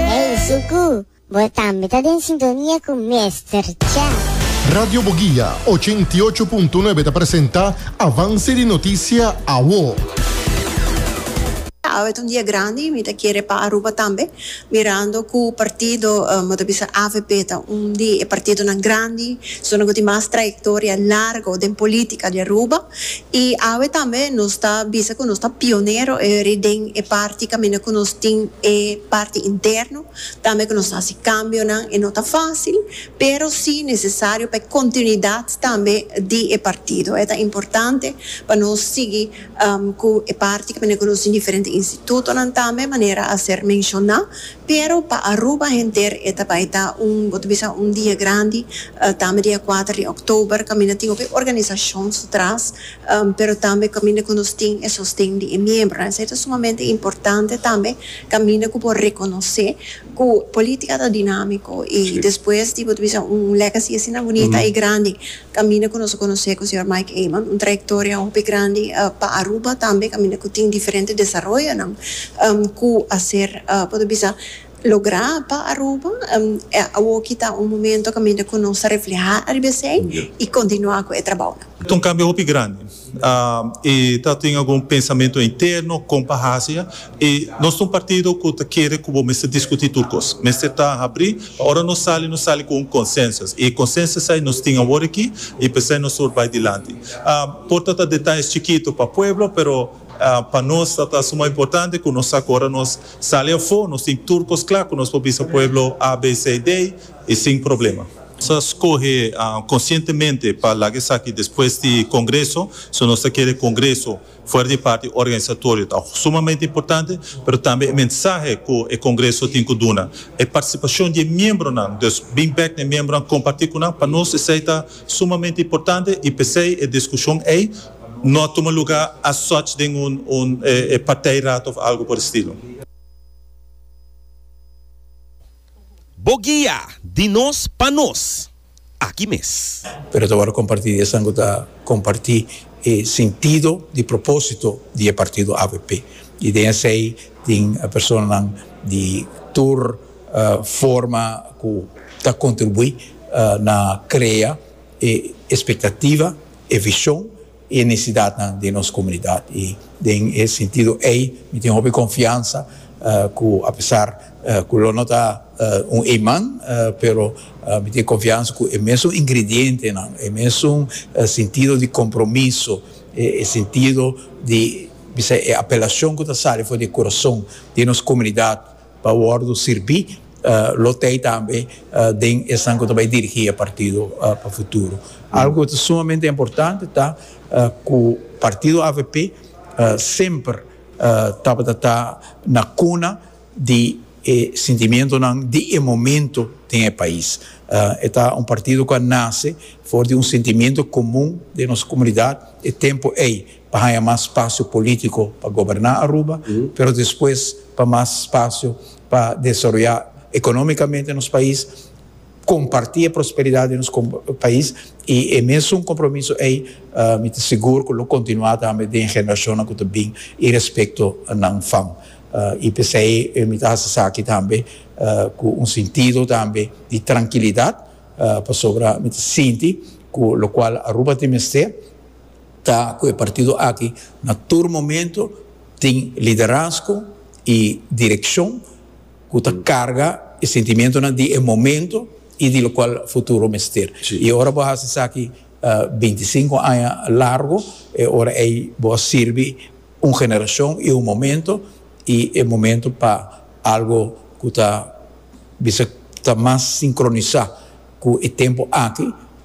Hey Suku, bo tambe ta den sintonia cu Mester Chef. Radio Boguia ochenta i ocho punto nuebe ta presenta Avance di Noticia Awo. Awe ta un dia grandi, mi ta kere pa Aruba tambe, mirando cu partido, bo ta bisa avp ta un di e partidonan grandi, zona cu tin mas trayectoria largo den politica di Aruba. I awe tambe nos ta bisa ku nos ta pionero eri den e parti kaminda ku nos tin e parti interno, tambe ku nos ta hasi kambionan. E no ta fásil, pero sí nesesario pa e kontinuidat tambe di e partido. E ta importante pa nos sigui ku e parti kaminda ku nos tin diferente institutonan tambe manera a ser menshoná. Pero pa Aruba henter e ta bai ta un, bo ta bisa un dia grandi, tambe dia kuater di òktober, kaminda tin hopi organisashon su tras, pero tambe kaminda ku nos tin e sosten di e miembronan. Esei ta sumamente importante tambe, kaminda ku bo rekonosé ku polítika ta dinámiko i despues di bo ta bisa un legacy asina bunita i grandi Camina cu nos a conoce cu Señor Mike Eman, un trayectoria hopi grandi pa Aruba tambe caminda cu tin diferente desaroyonan cu a ser poder bisa logra pa Aruba. Awoki ta un momento caminda cu nos ta refleha ariba esey y continua cu e trabounan. Ta un cambio hopi grandi. E ta tin algun pensamentu interno kon pa hasi. E nos ta un partido ku ta kere ku bo mester diskutí tur kos. Mester ta habrí pa ora nos sali, nos sali ku un konsensus. E konsensus ei nos tin awor aki i p'esei nos tur bai dilanti. Por ta ta detayes chikitu pa pueblo, pero pa nos ta ta suma importante ku nos sa ku ora nos sali afó nos tin tur kos kla ku nos por bisa pueblo A, B, C i D. i sin problema. Nos a skohe konsientemente pa laga esaki despues di Kongreso, so nos ta kere Kongreso fuera di parti organisatorio ta sumamente importante, pero tambe e mensahe ku e Kongreso tin ku duna, e partisipashon di e miembronan, dus bin bèk na e miembronan kompartí ku nan, pa nos esei ta sumamente importante i p'esei e diskushon ei no a tuma lugá as such den un partijraad òf algu por e stilo. Bo guia di nos pa nos aki mes. Pero ta wòrdu kompartí. Esnan ku ta kompartí e sintido di propósito di e partido avp. I den esei tin personanan di tur forma ku ta kontribuí na krea e ekspektativa, e vishon e necesidadnan den nos comunidad y den e sentido ey mi tin hopi confiansa cu apesar cu lo no ta un iman pero mi tin confiansa cu e mesun ingredientenan, e mesun sentido di compromiso, e sentido di bisai e apelacion cu ta sali for di e corazon den nos comunidad pa wòrdu sirbi lo t'ei tambe den esnan ku ta bai dirigí e partido pa futuro. Algu ku ta sumamente importante ta ku partido avp semper tabata ta na kuna di e sentimentunan di e momento den e pais. E ta un partido ku a nase for di un sentimentu komun den nos komunidat e tempu ei pa haña mas spasio polítiko pa goberná Aruba, pero despues pa mas spasio pa desaroyá ekonómikamente nos pais, kompartí e prosperidat di nos pais i e mesun kompromiso ei mi ta sigur ku lo kontinuá tambe den generashonnan ku ta bin i respekto nan fam. I p'esei mi ta hasi esaki tambe ku un sintido tambe di trankilidat pasobra mi ta sinti ku lokual Aruba ta mester, Ta cu e partido aki na tur momento tin liderazgo y direccion cu ta carga e sentimentonan di e momento y di locual futuro mester. Y ora bo a haci esaki binti sinku aña largo e ora ey bo a sirbi un generacion y un momento y e momento pa algo cu ta bisa ta mas sincronisa cu e tempo aki.